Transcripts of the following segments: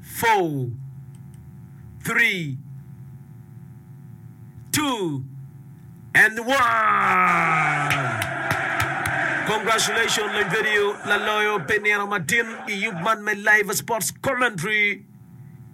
four, three, two, and one. Congratulations Lony Video laloyo pi nino matin i yub man me Live Sports Commentary.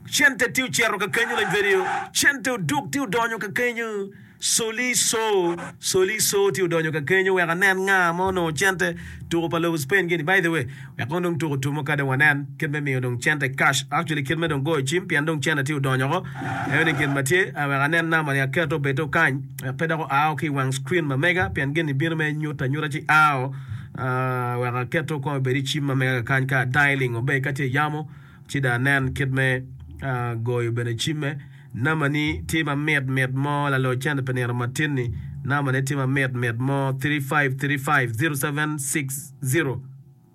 Cente tye ocito ka kenyo Lony Video, cente oduk tye odonyo ka kenyo. Soliso, Soliso tye odonyo ka kenyo wek anen nga ma onongo cente tuko pa lobo Spain gini, by the way wek kono dong tuko tumo kade wanen kit me miyo dong cente cash, actually kit me dong goyo cim pien dong cente tye odonyo ko, aye ni gin ma tye a wek anen number ni aketo obed o kany wek pe dok oa o ki i wang screen ma mega pien gini bino mere nyuta nyuta ci a o ah, wek aketo kong obed i cim ma mega ka kany ka a dialing o be ka tye yamo ci dong anen kit me ah, goyo bene cimme. Namani tye ma mit mit mo lalo cente pi nino matin-ni Namani tye ma mit mit mo 3535 0760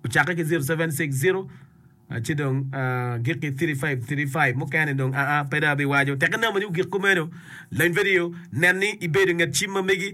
Ocakke ki 0760 a ci dong a gik ki 3535 Mukene-ni dong aa pe dong abiwaco Teke Namani ogik kumeno Lony vidio Nen ni ibedo i nget cim ma megi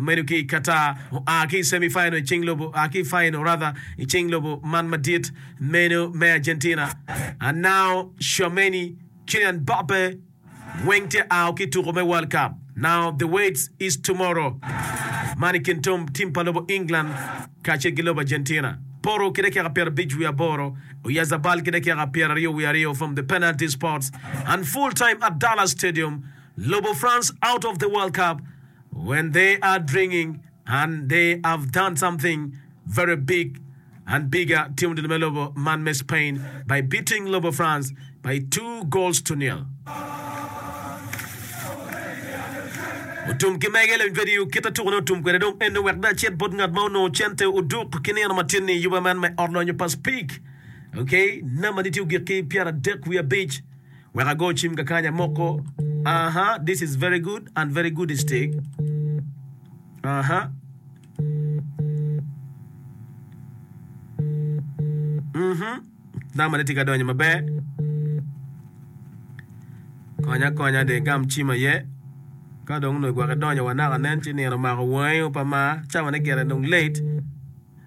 Medo ki i Qatar, oa ki i semi final i cing lobo, oa ki i final rather i cing lobo man madit meno me Argentina, Anao, Tchouameni, Kylian Mbappe weng tye ao ki i tuko me World Cup. Now the waits is tomorrow man i kin tim pa lobo England kacel ki lobo Argentina. Porro ki dakika pyera abic wiye aboro, Oyarzabal ki dakika pyera aryo wiye aryo from the penalty spots and full time at Dallas Stadium, Lobo France out of the World Cup. When they are dringing and they have done something very big and bigger timo dul me lobo man me Spain by beating lobo France by two goals to nil. Otum ki mege lewiny kwede iu kit atuku ne otum kwede dong ene wek dong acit bot ngat ma onongo cente oduk ki nino matin ni yuba man me ot lonyo pa Speke, okay, namba ni tye ogik ki pyera dek wiye abic. Wek ago cim ka kanya moko aha this is very good and very good is tig aha mhm nama ni tye ka donyo maber konya konya de gam cim aye ka dong nwe gwok idonyo wa naka nen ci nino omako wangi opa ma cawa ne gire dong late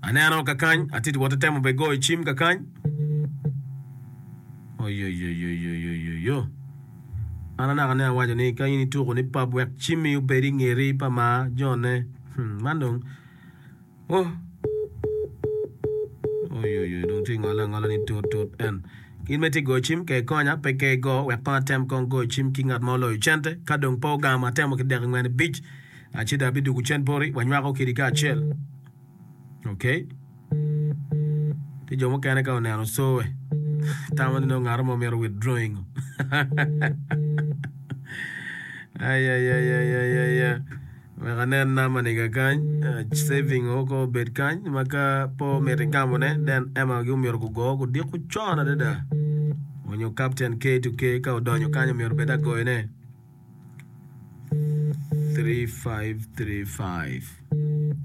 Aneno kakany, atye wot itemo be goyo cim kakany. Oyoyoyoyoyoyoyo. An anaka ne awaco ni ka in ituko ni pap wek cimmi obed i ngeti pa ma jone. Hmm, man dong. Oh. Oyoyoyo dong tye ngole angola ni tut tut en. Gin me tye goyo cim ka ikonya pe ka igo wek kong atem kong goyo cim ki ngat ma oloyo cente ka dong pe ogamo atemo ki dek ingwen ibic. Acida abidugu cent boti wanywako kidi kacel. Ok. Ki jo mukene ka oneno sowe tamo ni nongo ngato mo mito withdrawing. Ay ay ay ay ay ay. ay. Wek anen nama niga kany, eh, saving o ko obed kany ma ka po miti gamone den ema gi omyero gugo gudiko con adada. Onyo captain K to K ka odonyo kany omyero bed agoyone. 3535